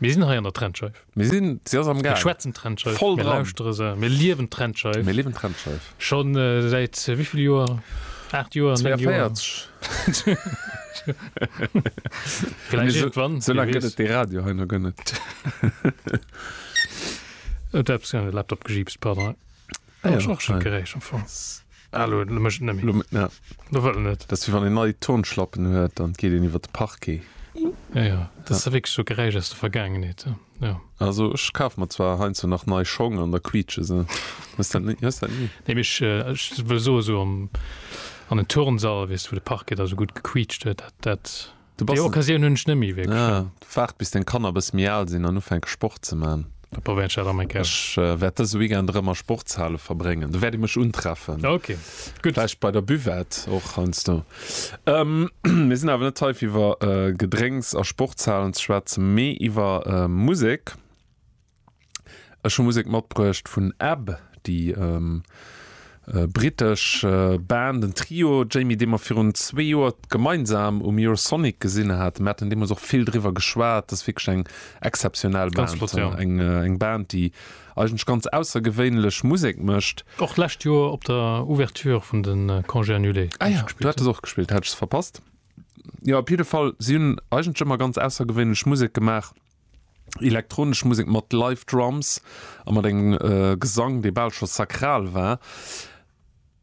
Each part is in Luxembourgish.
Mir sinn hei an der Trennscheif. Mir sinn, si ass am Gaang. Mir schwätzen Trennscheif. Voll dran. Mir lauschtere se. Mir liewen d'Trennscheif. Mir liewen d'Trennscheif. Scho säit wéi vill Joer? Aacht Joer? 42. Vläicht iergendwann. Sou laang gëtt et dee Radio hei nach guer net. Huet eppes an de Laptop gejiipst, pardon. Ah, ja, och schon gerecht am Fong. Hallo, du mech nëmmi. Lo, ja. Du wëll net. Das wie wann en nei Turnschlappen huet, dann geet en iwwer de Parquet. Ja, ja, das ja. wirklich so Geräisch aus der Vergangenheit. Ja. Also ich kaf mir zwar hein so nach nei Schong an der quietsche se. Was dann nicht? Was dann nicht? Nee, ich, äh, ich will so so am, an den Turnsall, weißt du, wo der Parquet da so gut gequietscht hat, dat, dat Du bass Déi en- Occasioun hunn ech net méi wierklech. Ah, waart bis deng Kanner e bësse méi al sinn an ufänke Sport ze man. Da probéieren ech dat am eng Kéier. Ech wäert dëse Weekend erëm a Sportshale verbréngen. Do wäert ee mech untreffen. Ok, gutt. Vläicht bei der Buvette och heiansdo. Ähm, mir sinn awer net hei fir iwwer Gedrénks a Sportshalen ze schwätzen, mee iwwer Musek. Ech hu Musek matbruecht vun Ab, déi brittesch Band, en Trio, Jamie, dee mer virun zwee Joer gemeinsam um Eurosonic gesinn haten. Mir haten deemools och vill driwwer geschwat. Dat ass wierklech eng exzeptionell Band, eng Band, déi eigentlech ganz aussergewéinlech Musek mécht. Och d'lescht Joer op der Ouverture vun de Congés Annulés. Ah jo, do hat de se och gespillt, hat ech se verpasst. Jo, op jidde Fall, si hunn eigentlech ëmmer ganz aussergewéinlech Musek gemaach. Elektronesch Musek mat Live Drums a mat engem Gesang, dee bal scho sakral war.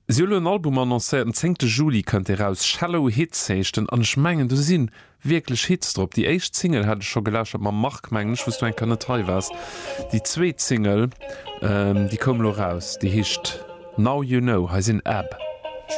Si hu lo en Album annoncéiert, den zéngte Juli kënnt dee raus. Shallow Hits heescht en an ech mengen do si wierklech Hits drop. Déi éischt Single hat ech scho gelauschtert mam Marc, mengen ech, wou s du eng Kéier net hei waars. Déi zweet Single, déi koum lo raus, déi heescht Now You Know. Hei sinn Ab.